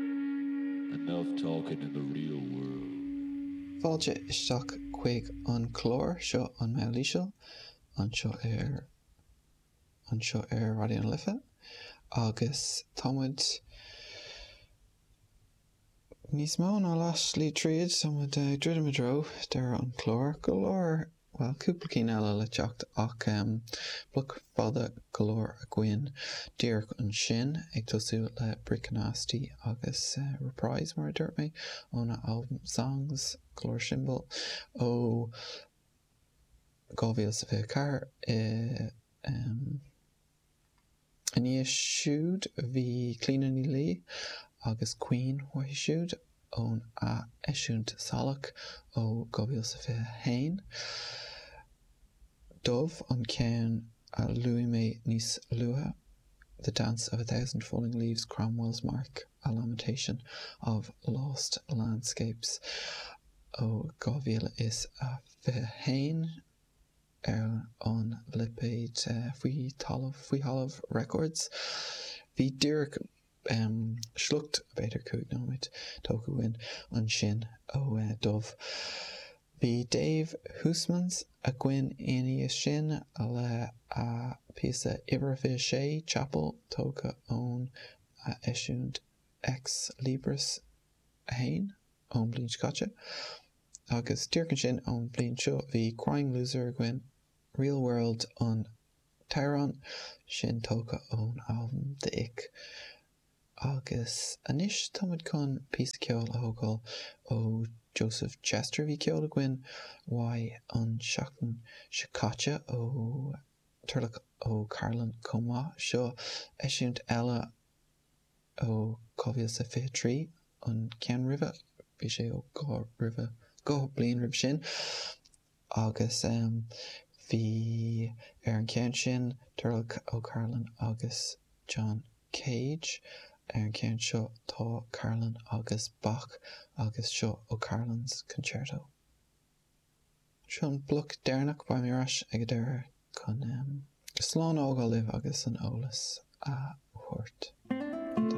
Enough talking in the real world. Fáilte isteach chuig an clár seo An Meall Íseal anseo ar anseo ar Raidió na Life agus tá muid níos mó ná leath slí tríd tá muid ag druidim i dtreo deireadh an clár go leor Bhuel, cúpla cinn eile le teacht ach bloc fada go leor againn díreach ansin, ag tosú le Bricknasty agus Reprise, mar a dúirt mé, óna albam Songs, go leor simplí ó 2024 i. Ina dhiaidh siúd bhí Clíona Ní Laoi agus Caoin uaithi siúd ón ath-eisiúint Salach ó 2021. Dubh an ceann a luaigh mé níos luaithe, The Dance of a Thousand Falling Leaves, Cromwell's Mark, A Lamentation of Lost Landscapes ó 2021. ar an lipéad Faoi Thalamh, Faoi Thalamh Records. Bhí díreach sliocht, b'fhéidir cúig nóiméad, tógtha againn ansin ó Dubh. Bhí Dave Huysmans againn ina dhiaidh sin le a phíosa Uimhir a 6, Chapel, tógtha ón eisiúint Ex Libris 1 ón bhliain seo caite. Agus díreach ansin ón bhliain seo bhí Crying Loser againn, Real World an t-amhrán sin tógtha ón albam The Ick agus anois tá muid chun píosa ceoil a thógáil ó Joseph Chester. Bhí ceol againn uaidh an seachtain seo caite ó Turlough O'Carolan chomh maith. Seo eisiúint eile ó 2023, an ceann roimhe bhí sé ó dhá roimhe, dhá bliain roimhe sin, agus bhí ar an cheann sin Turlough O'Carolan agus John Cage. Ar an cheann seo tá Carolan agus Bach agus seo O'Carolan's Concerto. Seo an bloc deireanach, beidh mé ar ais ag an deireadh chun slán a fhágáil libh agus an eolas a thabhairt don.